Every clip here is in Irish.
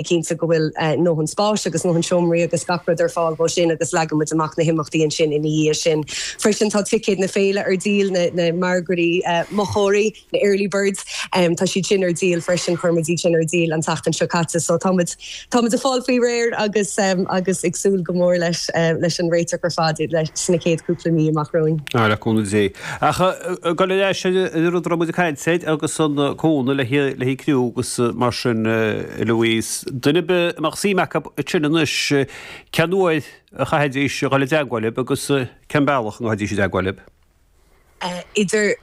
cinnte go bhfuil a ndóthain spáis agus a ndóthain seomraí agus gach rud ar fáil dhó sin agus leagann muid amach na himeachtaí ansin ina dhiaidh sin. Freisin tá ticéid na féile ar díol, na margaí mochóirí, na early birds, tá siad sin ar díol freisin, chuir muid iad sin ar díol an tseachtain seo caite so tá muid, tá muid ag fáil faoi réir agus, agus ag súil go mór leis, leis an réiteach ar fad sna chéad cúpla mí amach romhainn. Le cúnamh Dé. Ach gabh le leis an rud a raibh muid ag caint air agus an cúnamh le haghaidh criú agus mar sin a Louise. Duine ar bith a mbeadh suim acu ansin anois cén uair a chaithfidís a dhul i dteagmháil libh agus cén bealach a ngabhaidís i dteagmháil libh? idir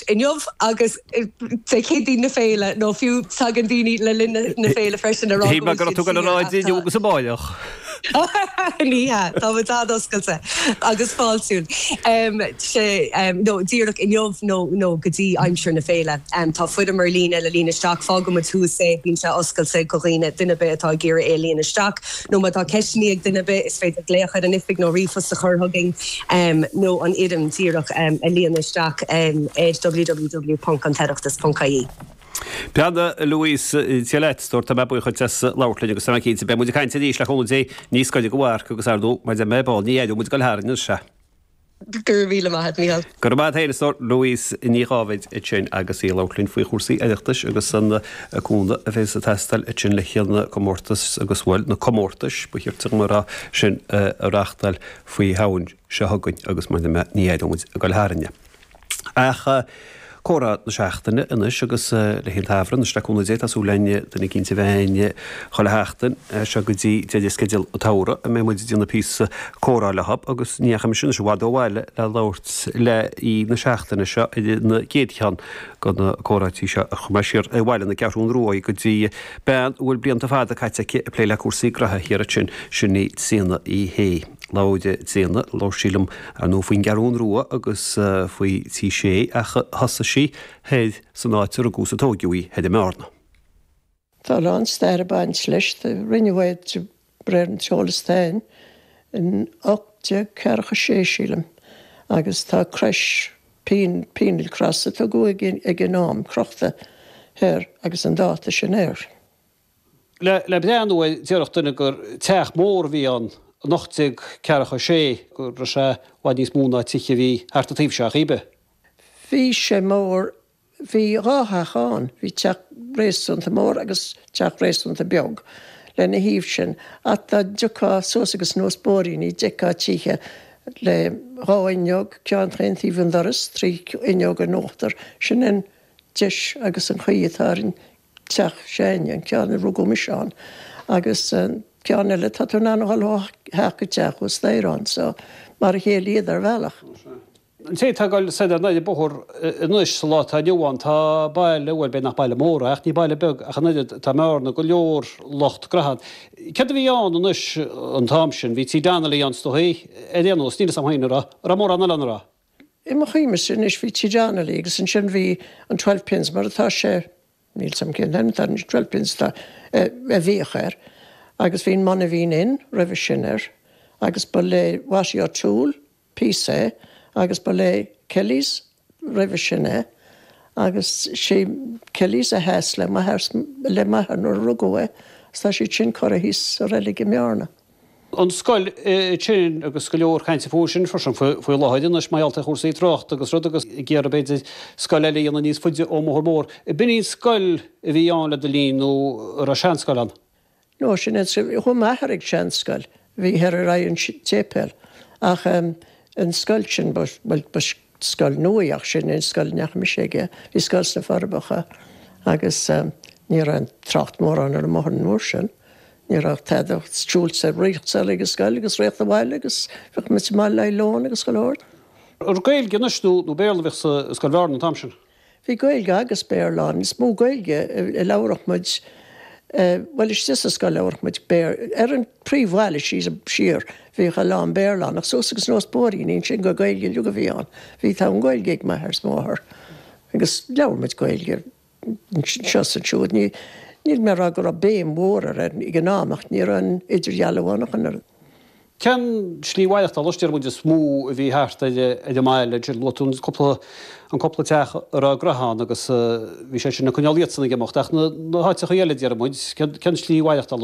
inniu agus Dé Céadaoin na féile nó fiú tagann daoine le linn na féile freisin a rá go bhfuil siad ar fáil. Ní hea, tá muid an-oscailte agus fáiltiúil. Más é díreach inniu nó go dtí aimsir na féile. Tá foirm ar líne le líonadh isteach. Fágfaidh muid thuas é. Bíonn sé oscailte go dhaoine, duine ar bith atá ag iarraidh í a líonadh isteach. Nó má tá ceisteannaí ag duine ar bith, is féidir glaoch ar an oifig nó ríomhphost a chur chugainn nó an fhoirm díreach a líonadh isteach ar www.antoireachtas.ie. Bhuel a Louise, go raibh maith a't, a stór, tá mé buíoch duit as labhairt linn agus tá mé cinnte beidh muid ag caint arís le cúnamh Dé níos gaire don mharc agus ar ndóigh mar deir mé ar ball ní aireoidh muid ag dul tharainn é. Go raibh míle maith a't, Mícheál. Go raibh maith a't féin, a stór. Louise Ní Dháibhéid ansin agus í ag labhairt linn faoi chúrsaí Oireachtais agus an cúnamh a bhéas ag teastáil ansin le haghaidh na comórtais agus, bhuel, na comórtais, ba chirte dhom a rá, sin a reachtáil faoi Shamhain seo chugainn agus mar deir mé ní aireoidh muid ag dul tharainn. Ach comhrá na seachtaine anois agus le haghaidh an tsamhraidh anois le cúnamh Dé, tá súil againn duine eicínt a bheith againn chuile sheachtain as seo go dtí deireadh sceideal an tsamhraidh a mbeidh muid ag déanamh píosa comhrá leotha agus ní dheachaigh mise anois i bhfad ó bhaile le labhairt le haoi na seachtaine seo ar an gcéad cheann go na comhráití seo chuaigh mé siar ar bhaile na Ceathrún Ruaidh go dtí bean a bhfuil blianta fada caite aici ag plé le cúrsaí graithe thiar ansin, sin í Tríona Uí Shé. Labhair Tríona, labhair sí liom ar ndóigh faoin gCeathrún Rua agus faoi Tigh Sé ach thosaigh sí thoir san áit a rugadh is a tóigeadh í, thoir i mBearna. Tá a lán stair ag baint leis, rinneadh é de réir an t-eolas atá a'inn in ocht déag ceathracha sé sílim agus tá crois, penal cross, a tugadh ag an am, crochta thoir agus an dáta sin air. Le breathnú air déarfadh duine gur teach mór a bhí ann in ocht déag ceathracha a sé, go raibh sé i bhfad níos mó ná tithe a bhí thart an taobh seo ach cibé. Bhí sé mór, bhí dhá theach ann, bhí teach réasúnta mór agus teach réasúnta beag lena thaobh sin ach dá dtiocfá suas agus anuas bóithríní d'fheicfeá tithe le dhá fhuinneog, ceann chaon taobh an doras, trí fhuinneog in uachtar, sin an deis agus an chaoi atá ar an. Teach ceann, an ceann a rugadh mise ann agus an ceann eile, tá tú in ann a dhul ó theach go teach ósta inniu ann is mar a chéile iad ar bhealach. An té atá ag dul soir ar n-ais an bóthar anois sa lá atá inniu ann tá baile, bhuel beidh nach baile mór é ach ní baile beag ach an oiread, i mBearna go leor lucht graithe ann. Céard a bhí ann anois an t-am sin, bhí tí Donnelly ann is dóigh, ar aon nós, níl 'fhios a'm fhéin an raibh, an raibh mórán eile ann, an raibh? I mo chuimhne-se anois bhí Tigh Donnelly agus ansin bhí an Twelve Pins mar atá sé, níl 's agam cén t-ainm atá ar an Twelve Pins atá, a bhíodh air agus bhí an Monaveen Inn roimhe sin air agus ba le Watty O'Toole píosa é agus ba le Kelly's roimhe sin é agus sé Kelly's a sheas le m'athair nuair a rugadh é 's tá siad sin curtha thíos sa reilig i mBearna. an scoil ansin agus go leor cainte faoi sin freisin faoi láthair anois mar gheall ar chúrsaí tráchta agus rud agus ag iarraidh b'fhéidir scoil eile a dhéanamh níos faide ón mbóthar mór. B'in í an scoil a bhí ann le do linn nó an raibh seanscoil ann? No, sin é, chuaigh m'athair ag seanscoil a bhí thoir ar aghaidh an tséipéal ach an scoil sin, bhuel ba scoil nua í ach sin é an scoil a ndeachaigh mise aige. Bhí scoil sna Forbacha agus ní raibh trácht mórán ar an mbóthar an uair sin. Ní raibh tada ach siúl soir rith soir ag an scoil agus rith abhaile agus bhíodh muid mall le haghaidh lón agus go leor. Gaeilge anois nó Béarla a bhíodh i Scoil Bhearna an t-am sin? Bhí Gaeilge agus Béarla ann. Is mó Gaeilge a labhradh muid, bhuel istigh sa scoil labhradh muid Béarla. Ar an príomhbhealach síos, siar, bhíodh a lán Béarla ann ach suas agus anuas na bóithríní ansin ba Gaeilge uilig a bhí ann. Bhí, tá an Gaeilge ag m'athair is mo mháthair agus labhair muid Gaeilge. Seo is siúd, níl mé ag rá go raibh béim mhór air ag an am ach ní raibh an idirdhealú ann ach an oiread. Cén slí mhaireachtála, deir muid, is mó a bhí thart ar an mbaile? Luaigh tú an cúpla teach a raibh graithe ann agus bhí sé sin ag coinneáil iadsan ag imeacht. Ach na háiteachaí eile, deir muid, cén slí mhaireachtála?